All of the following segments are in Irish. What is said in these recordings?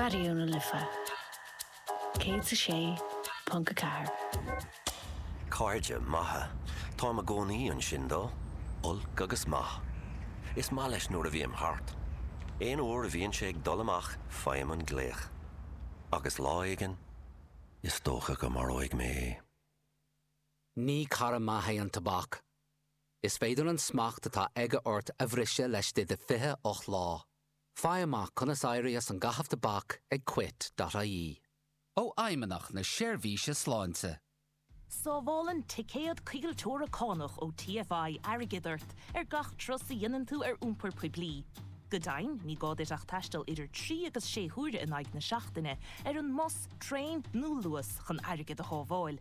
Raidió na Life 106.4. Cairde maithe. Táim i gcónaí ansin dó, olc agus maith. Is maith leis nuair a bhím thart. Aon uair a bhíonn sé ag dul amach faighim an glaoch. Agus lá éigin, is dócha go maróidh mé é. Ní cara maith é an tobac. Is féidir an smacht atá aige ort a bhriseadh laistigh de 28 lá. Faigh amach conas éirí as an gcaitheamh tobac ag Quit.ie. Ó Fheidhmeannacht na Seirbhíse Sláinte. Sábhálann ticéad coigilteora cánach ó TFI airgead ort ar gach turas a dhéanann tú ar iompar poiblí. Go deimhin, ní gá duit ach taisteal idir trí agus sé huaire in aghaidh na seachtaine ar an mbus, traein nó Luas chun airgead a shábháil.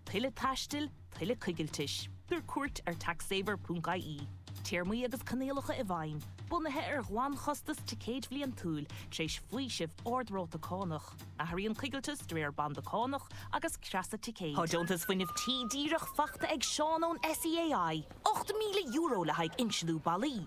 Tuilleadh taistil? tuilleadh coigiltis, tabhair cuairt ar taxsaver.ie. Téarmaí agus coinníollacha i bhfeidhm, bunaithe ar ghlanchostas ticéid bhliantúil, tar éis faoiseamh ard-ráta cánach. Athraíonn coigilteas de réir banda cánach agus creasa ticéid. Tá Deontas Fuinnimh Tí díreach faighte ag Seán ón SEAI, €8,000 le haghaidh insliú ballaí.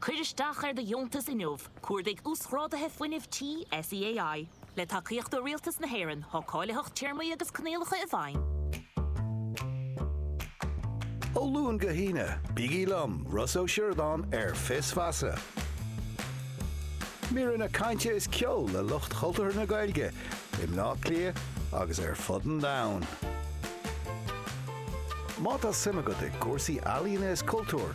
Cuir isteach ar do dheontas inniu, cuardaigh Uasghráduithe Fuinnimh Tí SEAI. Le tacaíocht ó Rialtas na hÉireann, tá cáilitheacht téarmaí agus coinníollacha i bhfeidhm. Ó Luan go hAoine, bígí liom, Rossa Ó Sioradáin, ar Fios Feasa. Míreanna cainte is ceol le lucht chultúrtha na Gaeilge i mBleá Cliath agus ar fud an domhain. Má tá suim agat i gcúrsaí ealaíne is cultúir,